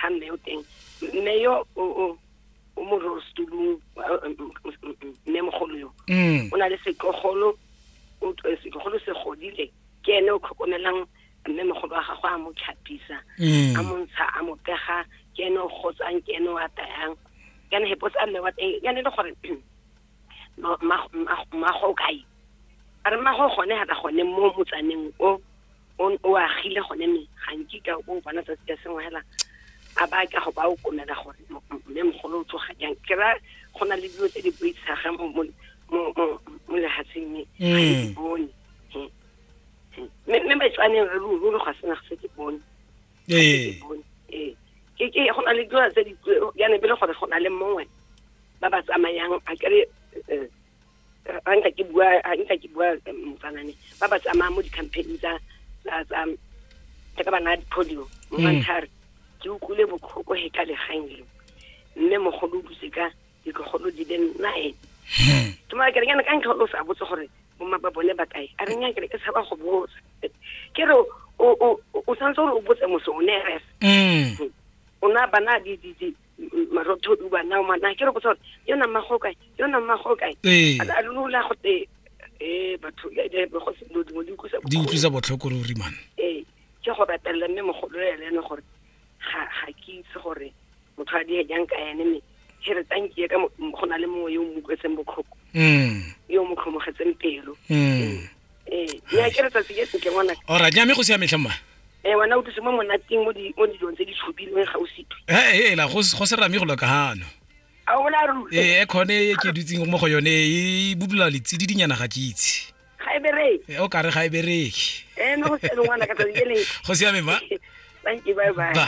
ga mme o teng mme yo o o mo rostulung mme mogolo yo mm. o na le setlogolo eh, setlogolo se godile ke ene o tlhokomelang mme mogolo wa gagwe a mo tlhapisa mm. a montsha a mo pega ke ene o gotsang ke ene o atayang kana hepo tsa mme wa teng ya ne le gore mmago o kae a re mmago gone ga ka gone mo motsaneng o o agile gone me ga nkika o bona tsatsi ka sengwe fela a ba ka go ba o komela gore mme mogolo o tsoga jang ke ra go na le dilo tse di boitshaga mo lehatsheng me ga di mm. bone mme batswaneng re ruri ga sena se ke bone ee ee go na le dilo tse di ya ne bele gore go na le mongwe ba ba tsamayang a kere eh, eh, a nka ke bua a nka ke bua eh, motsanane ba ba tsamayang mo di-campaign tsa tsa tsa ka bana polio mo mm. mantshare ke utlwile botlhoko he ka legang leo mme mogolo o duse ka dikgolo di le nine hmm. ke mara ke renyana ka ntlha o sa botse gore bomma ba bone ba kae a renya kere ke tshaba go botsa ke re o santse gore o botse mose o ne ref hmm. o na bana di di di marotho o bana mana ke re botse gore yo na mmago kae yo na mmago kae ee. a lula go te eh batho ya di go se lo di mo di kusa di utlwisa botlhoko ruri man ee ke go ratelela mme mogolo ya lene gore ga ga ke itse gore motho a diya jang ka ene me he re tankie ka go na le mongwe yo o mokwetseng botlhoko mm. yo o mo tlhomogetseng pelo mm. ee ya ke re tsatsi ke sentle ngwana ora ja me go siametlhe mma ee wena o tlise mo monateng mo dilong tse di tshupilweng ga o sitwe ee ela go se rame go loka gano ee khone e ke dutseng mo go yone e budula letsedi dinyana ga ke itse ga e bereke eh, o ka re ga e bereke eh, go siame ba thank you bye bye, bye.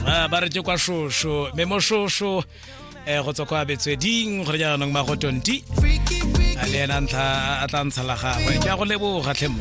Ah, ba re tse kwa shosho mme mo shosho um go tswa kwa betsweding gore jaanong magotonti a le ena ntlha a tla ntsha la gagwe ke a go leboga tlhemmo